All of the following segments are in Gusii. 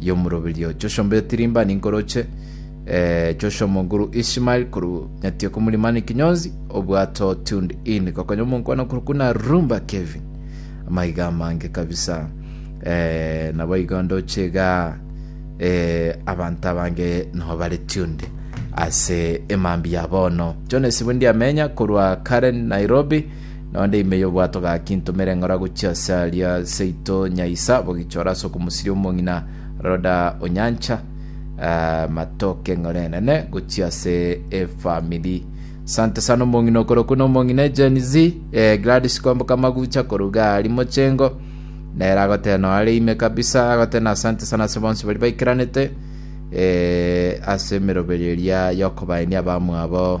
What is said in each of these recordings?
y'omoroberio Joshua Mbeotirimba ninkoroche, eh, Joshua Moguru Ishmael korwa Nyatioko Mulimani Kinyonzi, obwato tuned in gokonya omonkwana korwa kuna Rumba Kevin. Amaiga amange kabisa. Eh, nabo igo ndoche iga eh, abanto abange nabo bare tuned ase emambi ya bono. Jones Bundiamenya korwa Karen Nairobi. Nonde ime y'obwato gaki ntomere ng'ora gochia ase aria seito Nyaisa bogichora ase okomosiria omong'ina Roda o Nyancha ah, matoke ng'ore enene gochia ase efamili. Sante sana omong'ina okorokwa na omong'ina Gen Z eh, Gladys Kwamboka Magucha koruga ari mochengo nere agotee no are ime kabisa agotee na asante sana ase bonsi bari baikeranete eh, ase emeroberio eria yokobaenia abamwabo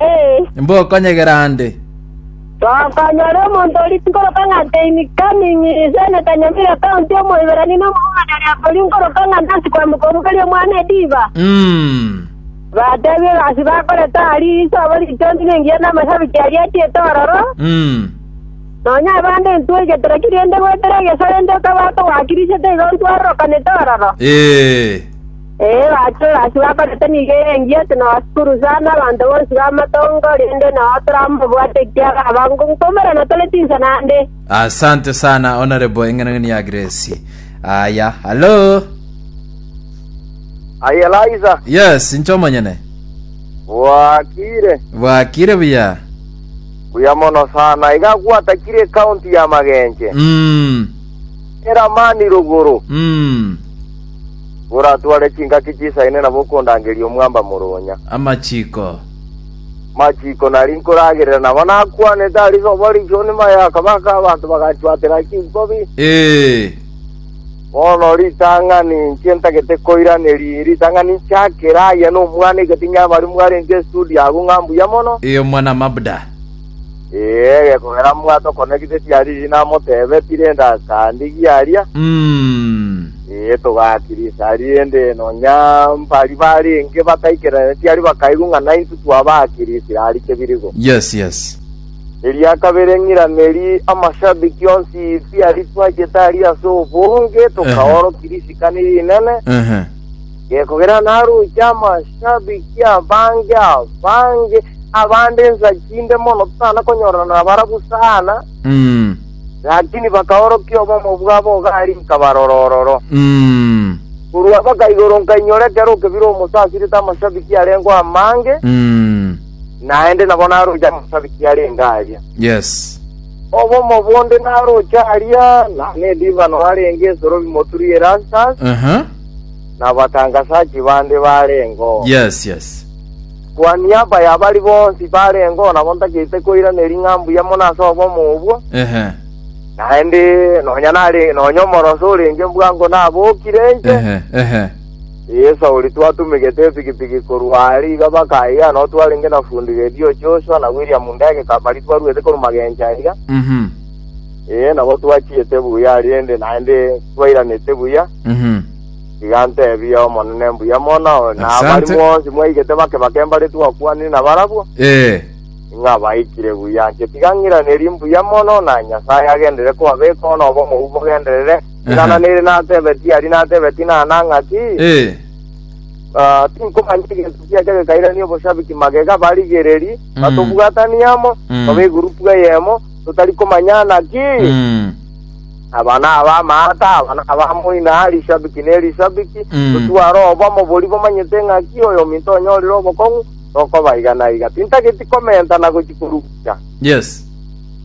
Ee. Mbokonyegera ande. Tokonyora omonto oria nkoroka ng'a Teini Kaming'i, ise na Tanyamira Kaunti, Omoiberania na Omoyunani aria oria nkoroka ng'a Nancy Kwamuka omobeli omwana Ediba. Mm. Batebie egasi bakorete aria, risobo ritondi na engiya na amashabiki aria achiete ororo, Mm. nonya abande ntwegetera ki rende goetera egeso rende okabwata ogwakirisete iga ontwarorokanete ororo. Ee. Ee, bachore ase bakorete nigo erengiya ase nabasukuru sana, abanto bonsi b'amatongo, rende nao toramobwate ekiagera abango nkomera na tore chinsa naende. Asante sana Honorable Eng'enang'eni ya Grace. Aya, hello. Aye Liza, Yes, inche omonyene. bwakire. Bwakire buya. Buya mono sana. Iga gwatakire county ya Magenche. Mm. Eramani rogoro. Mm. Boratware chingaki chisaine nabo okondangeria omwamba moronya. Amachiko. Amachiko nari nkoragerera nabo nakwanete a risobo richoni maye akabaka abanto bagachwatera chinkobi. Ee. Bono ritang'ani inche ntagete koiraneria ritang'ani nchakere aya nomwana egati nyabari mwarenge estudio agwo ng'a mbuya mono. Ee omwana Mabda. Ee, gekogera mwato kone gise chiariri namotebe, Tirenda akandigia aria. Mm. Ee, togakirisa aria ende nonya mbari barenge bataikeraneti aria bakaigwa ng'a naintwe twabakirisire aria chebirigo. Yes, yes. Eria kabere ng'iraneri amashabiki onsi isi aria twachete aria ase obonge, tokaoro kirisika niri inene, Ehe. Gekogera naroche amashabiki abange abange, abande ensa chinde mono totana konyorana nabarabwo sana, Mm. lakini bakaorokia obomo bwabo ogari nkabarora ororo. Mm. Korwa mpaka igoro nkainyora ekero okebire omosa asirete amashabiki arengeo amange, Mm. naende nabo naroche amashabiki arenge aria. Yes. Obomo bonde naroche aria, na nediibano arenge esoro bimoturi Erastus, Aha. na abatangasachi bande bareng'o. Yes, yes. Kwa niaba ya bari bonsi bareng'o, nabo ntagete koiraneria ng'a mbuya mono ase obomo obwo, Ehe. naende nonya nare nonya omoroso orenge bwango nabokire inche, Ehe. Ehe. Eye Sauli twatumegete epikipiki korwa are iga mpaka aiga, nao twarenge na fundi redio Joshua na William Ndege Kabari twaruete korwa magencho aiga. Mhm. Ee, nabo twachiete buya rende naende twairanete buya, Mhm. iga ntebia Omonene mbuya mono, na Asante. abarimo bonsi mwaigete bake bake mbare twakwanire nabarabwo, Ee. ng'a baikire buya. Inche tiga ng'iranerie mbuya mono, na Nyasae agenderere kobabeka, bono obomo obwo bogenderere, Inana nere natebe, Tiari natebe, Tinana ng'aki? Eh. Ah, tinkomanya egento kiacha gekairania oboshabiki magega barigereri Mm. batobwatanie amo Mm. tobe egurupu eyemo totari komanyana ki Mm. aba naba amaata aba naba moina rishabiki ne rishabiki Mm. totware obomo bori bomanyete ng'aki oyo ominto onyorire obokong'u tokoba iga na iga tintageti komenta na gochi korugucha Yes.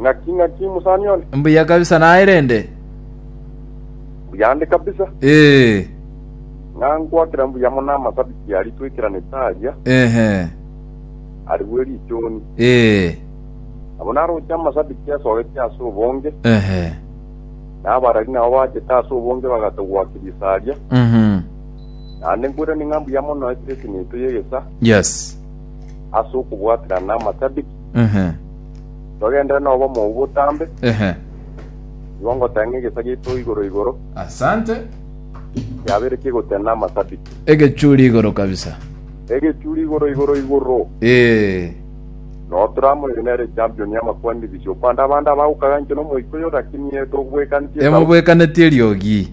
Ng'aki, ng'aki, mosani one. Mbuya kabisa naye rende. Mbuyande kabisa. Ee. Ng'a nkwakera mbuya mono amasabiti aria twekeranete aria. Ehe. Arigwe richoni. Ee. Nabo naroche amasabiti asogete ase obonge. Ehe. Na abarari nabo bachete ase obonge bagatogwa kirisa aria. Mhm. Naende nkoirani ng'a mbuya mono ekiresi neito y'egesa. Yes. Ase okobwaterana namasabiti. Ehe, Twagenderere nobomo obwo botambe, ehe. igo ngoteng'e egesa giaito igoro igoro, Asante. kiabeire kigotena amasabiti. Egechuri igoro kabisa. Egechuri igoro igoro igoro. Eh. No Trump oyo nere champion ya makwandibisio. Kwande abande abagokaga inche nomoika oyo lakini eh, togobwekantie Emobwekaneti eriogi.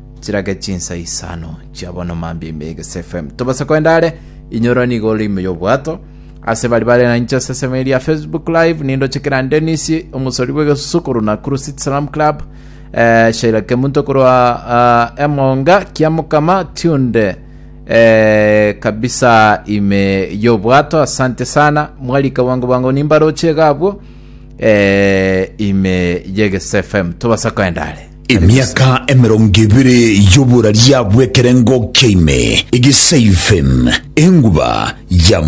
chirage chinsa isano chia bono mambia ime egese FM tobase kwenda are inyora nigo ore ime y'obwato ase bari bare na inche ase esemo eria Facebook live nindo chekera Dennis omosori bw'egesusu korwa Nakuru City Salam Club eh, Sheila Kemunto korwa ah, Emonga Kiamukama Tunde eh, kabisa ime y'obwato asante sana mwarika bwango bwango nimbarochie gabwo eh, ime y'egese FM tobasa kwenda are Emiaka emerongo ebere y'oboraria bw'ekerengo kia ime, egiseifen, enguba ya